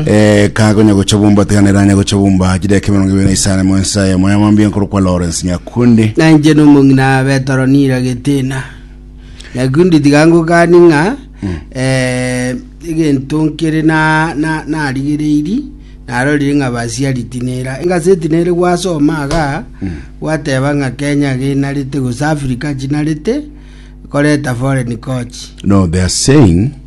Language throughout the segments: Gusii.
Eh, kagonya gocha bumba tiganera anya gocha bumba chideka emerongo ibere na isano emo ensa emo ya mambia nkoro kwa Lawrence Nyakundi na inche nomong'ina betoro nira getina nyakundi tiga ngokani ng'a eh, egento nkere na- na- narigereiri narorire ng'a basiari tinera engase tinere gwasoma aga gwateba ng'a kenya genarete gose africa chinarete koreta foreign coach no they are saying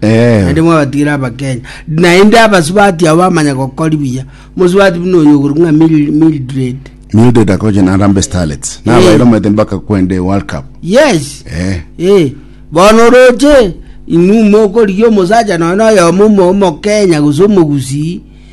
Eh. naende mwabatigira abakenya naende abasubati abo bamanya gokori buya mosubati buna oyo ogoro ng'a Mil- mildred Mildred akoche na Harambee Starlets. Na Eh. bairo mwete mpaka kwende World Cup. yes Eh. Eh, bono roche inwe mokorigia omosacha nonya na oyomo omo- omokenya gose omogusii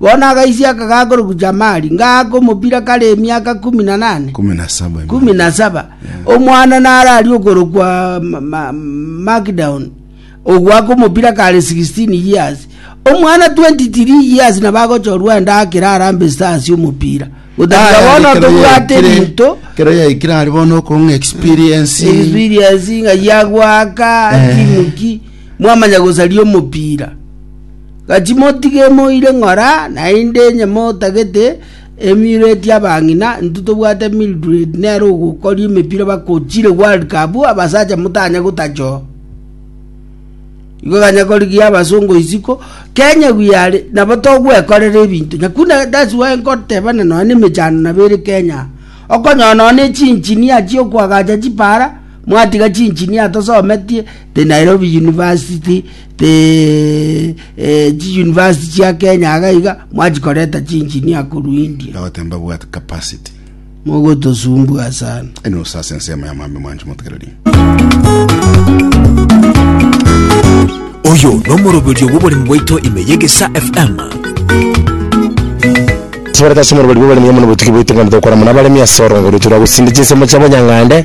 Bono agaisia akagaa korokwa Jamali, ngaaka omobira kare emiaka kumi na nane, Kumi na saba. kumi na saba. Omwana nararie okorokwa Ma- Ma- Magdaon, ogoaka omobira kare 16 years. Omwana 23 years nabo agochorwa ende akere arambe ase ase omopira. Gotakira bono tobwate rinto, kero yaikire ari bono okong'a experience experience ng'a yagoaka Eh. timu ki, mwamanya gosaria omopira. Gaki motige moire ng'ora, naende onye motagete emiiro eria abang'ina, intwe tobwate Mildred nere ogokoria emepira bagochire World Cup, abasacha motanye gotachoa. Igo ganya korigia abasongo isiko, Kenya we are nabo togwekorera ebinto. Nyakuna that's why nkoteba na nonya na emechando nabo ere Kenya. Okonyora nonya na echinchinia chi'okoagacha chipara. Mwatiga chinjinia tosometie te Nairobi university te chi university chia Kenya iga iga mwachikoreta chinjinia korwa India. Ndagotemba bwate capacity. Mogotosumbua sana. Eno osase ensemo ya mwami mwancho motegereri. Oyo nomoroberio bw'oboremu bwaito ime y'egesa FM. Tibareti ase omorweri bw'abaremi amo nobotugi bwaito ng'a togokora mono abaremi ase orongoreto rwa gosinda chinsemo chiabo nyang'ande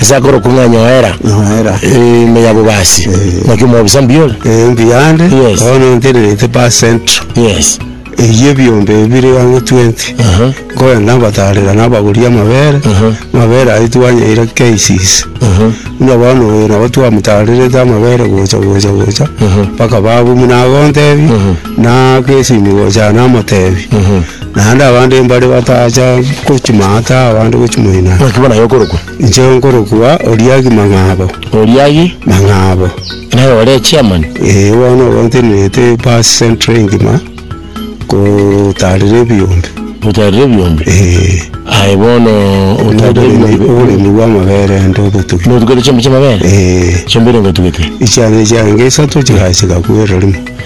ase akorokwa ng'a Nyoera Nyoera. ime ya Bobasi. Eh. Naki omwobisa mbiore. Eh, mbuya ande Yes. bono ntenerete pa central Yes. eyio ebiombe bibere gana 20 Aha. nkogenda ngotarera nabagori amabere Aha. amabere ayio twanyeire KCC Aha. buna bono oyo nabo twamotarerete amabere gocha gocha gocha Aha. mpaka babu buna agontebia Na agesimi gocha namotebi, naende abande mbare batacha gochima ata abande gochia moino aa. Naki bono aye okorokwa. Inche nkorokwa Oriagi Mang'abo. Oriagi. Mang'abo. Naye ore echairman. Ee bono obo ntenerete ebaasi centre engima, gotaarera ebiombe. Gotaarera ebiombe. Ee. Aye bono otaarera ebiombe. Oboremi bwa amabere ande obotugi. Notugete chiombe chia amabere? Ee. Chiombe ere ngotugete? Echiane chiane inga isato chigachika kwererimo.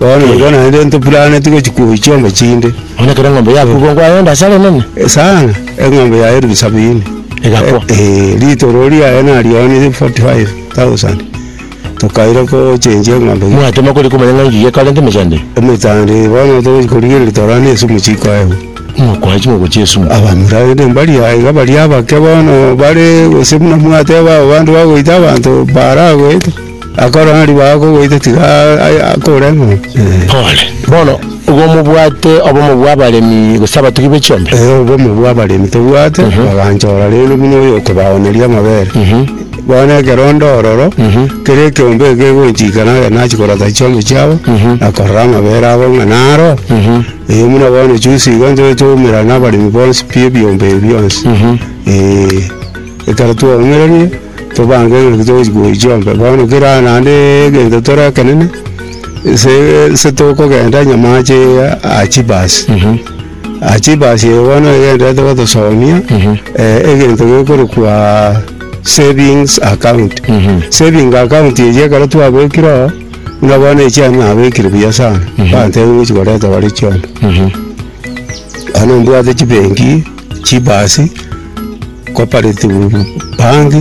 Bono igo naende ntopuraneti gochia kobuchia chiombe chinde. Onye kera eng'ombe yabekwa ngwa yonde asare enene. Eh, sana, eng'ombe yaye elfu sabini. Egakwa. Eh, eh, ritoro riaye narionetie forty five thousand. Tokaira gochenjia eng'ombe. Mwatema kori komanya ng'a engiya ekare nte emechando eye. Emechando bono togochi korigia ritoro ande esumu chikoegwa. Mokoa chingoko chia esumu. Abamura rende mbari aye iga baria abake bono bare gose buna mwateba abande bagoita abanto baara goeta. Akorora ng'a ribaga kogoita tiga akore ng'a, Ee. Pole. Bono, igo mobwate obomo bw'abaremi gose abatugi be chiombe? Ee, obomo bw'abaremi tobwate, baganchora rende buna oyokobaoneria amabere. Bono ekero onde ororo, kera ekeombe eke kegonchika nare nachia korota chiombe chiabo, na korora amabere abo ng'a naro, ee, buna bono juzi iga ntore toumera na abaremi bonsi pi ebiombe ebi bionsi, ee. Ekero twaong'eranie, tobange ng'aki togochi koichia ombe. Bono kera naende egento tore ekenene, ase ase tokogenda nyamache iga aa chibus. Aa chibus eye bono egenderete gotosomia, egento gekorokwa savings account. Saving account eria ekero twabekire oo, buna bono echi ere nabekire buya sana, bantebia ngochi koreta bare chiombe. Bono mbwate chibenki. Chibasi, cooperative bank,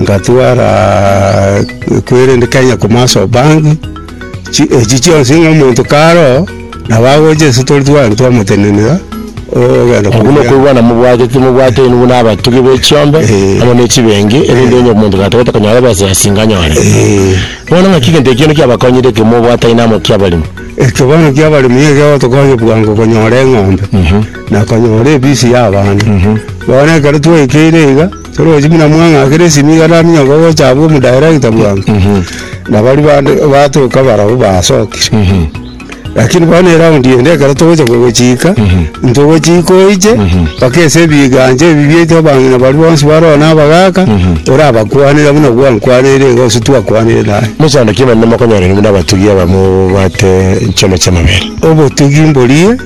ngatwara kwerende Kenya commercial bank, chi- echi chionsi ng'a omonto karoo nabo agocha ase tore tware twamotenenera ogenda Obwo kobua- nokoigwana mobwate timobwate inwe buna abatugi be chiombe Eh. amo ne chibengi erinde onye omonto gatagete konyora ebesa ya singa anyore Eh, bono ng'aki egento ekiya nekiabakonyire ekero mobwataine amo kiabaremi ekio bono kiabaremi nigo kiagotokonya bwango konyora eng'ombe. na konyora ebisi y'abana. Bono ekero twaikeire iga, toroche buna mwang'akera esimi iga naminyoka gocha abwo omodaerekita bwango, na baria bande batoka barabwo basokire. Rakini bono eraundi ende ekero togocha kogochika, ntogochika oiche mpaka ase ebigancha ebi biaito abang'ina baria bonsi bare oo na abagaka, orabakwanere buna gwankwaneire iga gose twakwanire naye. Mochando ki emenene mokonyorire buna abatugi abamobwate enchweno chi'amabere? Obotugi mborie.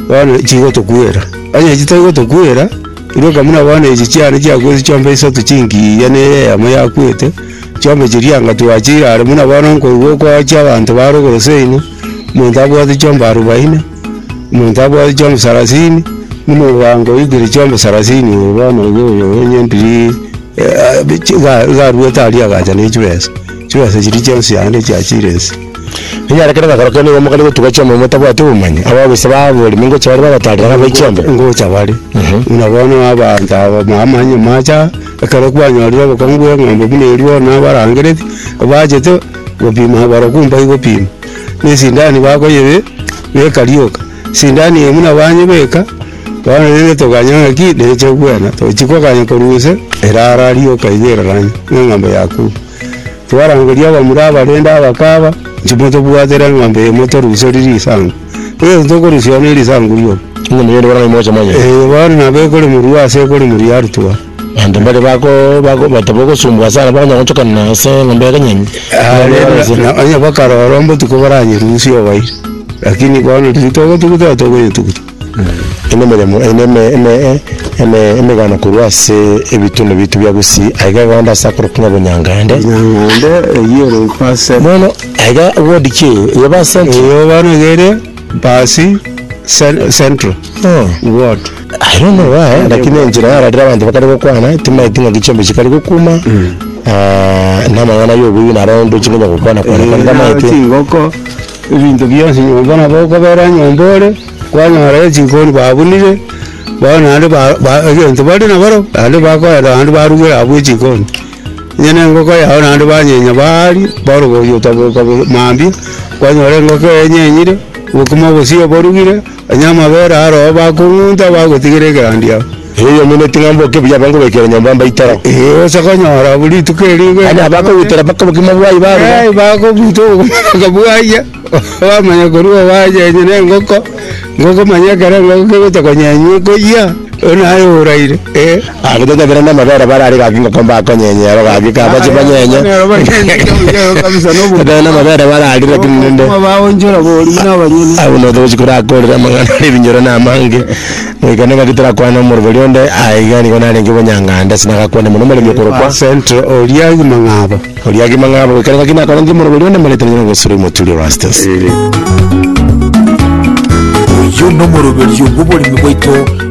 bono chigotokwera. Onye echio tari gotokwera, igo ka buna bono echio chiane chiakwete chiombe isato chingiya ne eye eyemo yakwete, chiombe chiria anga twachire are buna bono nkoigwa okoachia abanto ba rogoro seino, omonto abwate chiombe arubaini, omonto abwate chiombe sarasini, buna ogancha oikire chiombe sarasini oyo bono oyo oyo oyo nyendirii iga iga aruete aria agacha ne chibesa, chibesa chiria chionsi yande chiachire inse. Ekiagera kere gakoro kere nigo mokarigwe tuga chiombe motabwati obomanyi, abagusi ba aboremi ngocha bare bagotarera ng'a bai chiombe. Ngocha bare, buna bono abanto aba ba amanyinye mache aa, ekero kwanyorire obokong'u bwa eng'ombe buna erio bono nabarangereti, bachete gopima abarokwo mbae gopima, na esindani bakoyebe beka rioka, esindani eye buna banyebeka, bono rende toganya ng'aki neche kwena, tochi koganya korwa ise, erara rioka iga eraranie, na eng'ombe yakure. Twarangeria abamura abarende abakaba, Inche motobwatere eng'ombe eye motoruserie risangu, egento tokorusia one risangu rioka. Onye moyio nigo nang'ai mogocha monyene. Ee, bono nabo ekoremorua ase ekoremorua ya rituba. Abanto mbaria bako bako bateba ogosumbwa ase ara bakonyara gochokana ase eng'ombe ya kanyeni. Aa, rende na onye bakarora ombotuko baranyerusie obaire, lakini bono riria togotuguta togonyetuguta. Emeremo eye emegana korwa ase ebitunu biaito bia Gusii, aiga eganda ase akorokigwa ng'a Bunyangande. Bunyangande eyio ere Pass Centre. Bono aiga ward ki eyio? Eyo Pass Centre? Eyio bono iga ere Pass Central ward. I don't know why lakini enchera yara riria abanto bakare gokwana timaeti ng'aki chiombe chikare gokuma na amang'ana yobuya naro ndoche konya gokwana kwana kore tamaete. Chingoko. Ebinto bionsi nyomba nabo okobera nyomba ore, kwanyora echikoni babunire, bono naende egento bari naboro, naende bakoenda naende barugera abwo echikoni. Onye ne engoko yao naende banyenya baaria, bono ogotaboka mambia, kwanyora engoko enyenyire, bokima obosio oborugire. Onye amabera aroo bakong'unta bagotigera egerandi ao. Erio omeneti ng'a mboke buya abange goikera nyomba mbaitoro. Gose konyora abwo rituko eriinga. Aye nabakogutera mpaka obogima bwaye baruga. Ee, bakobuta obogima mpaka bwaria, bamanya korwa owacha onye na engoko, engoko manya ekero engoko kegocha konyenywa ekoyia, oyio naye oraire, ee. Agachia gokera namabere barare gaki ngoko mbakonyenye ero gaki kaba chibanyenye. Nero banyenye kebuyeo kabisa na obotuko. Ekero namabere bararire lakini rende. Obotuko baonchora bori buna abanyene. Abwo nobosa gochia korakorera amang'ana are ebinyoro na amange. Goika nigo gaki torakwane na omorwori onde, aye iga nigo narenge obonyangande ase nagakwane mono omoremi okorokwa. Central oria Kimang'abo. Oria Kimang'abo goika nigo gaki nakorenge omorwori onde omoreta rinyore Gosiro Imoturi Erastus. Oyio nomoroberio bw'oboremi bwaito.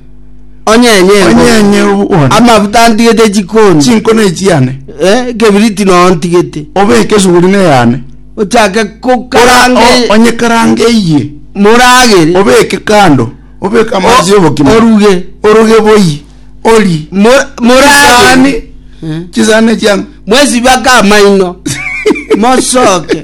Onye enye Onye engo. enye obone Amafuta antigete chikoni. chinkona echiane, Eh, ekebiriti noo ntigete. obeke esuguri neyane, Ochake Ora- o- kokaranga onye karanga eye, moragere. obeke kando, obeke amazi obokima, Oruge. oroge boyi, ori Mo- Moragere. chisani, chisani chiango. Mwesibake amaino. Mosoke.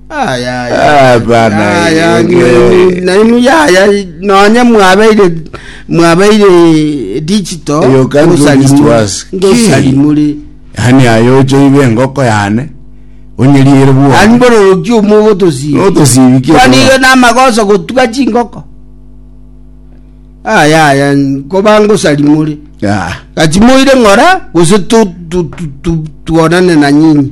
Aya, aya, Ah, bana, aya, eh, ni- eh. ni- nainu yaya nonye mwabeire mwabeire digital You can't do this to ngosarimuri- us. ngosarimuri yani ayo ochoibe engoko yane onyeriere ani bwa bororoki omo ogotosiba notosibikie kwaniga namagoso gotuga chingoko aya aya koba ngosarimuri Ah, gachimoire ng'ora gose tu- tu- tu- tu- tuonane na nyinyi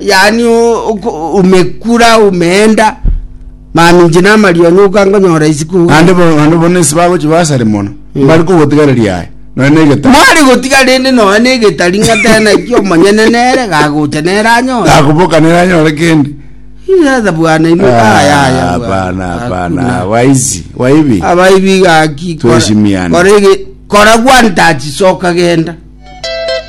yaani o- oko- omekura omeenda mani inche namarionya okangonyora isiko naende bo- naende bono ase bagochia basare mono mbare kogotigareria aye nonya na egetari mware gotiga rende nonya na egetari ng'a tena ki omonyene nere gagocha nere anyore gakoboka nere anyore kende Sasa bwana imo ayaya hapana hapana waizi waibi abaibi gaki kora- Tuheshimiane. kora ege- kora gwantachi soka genda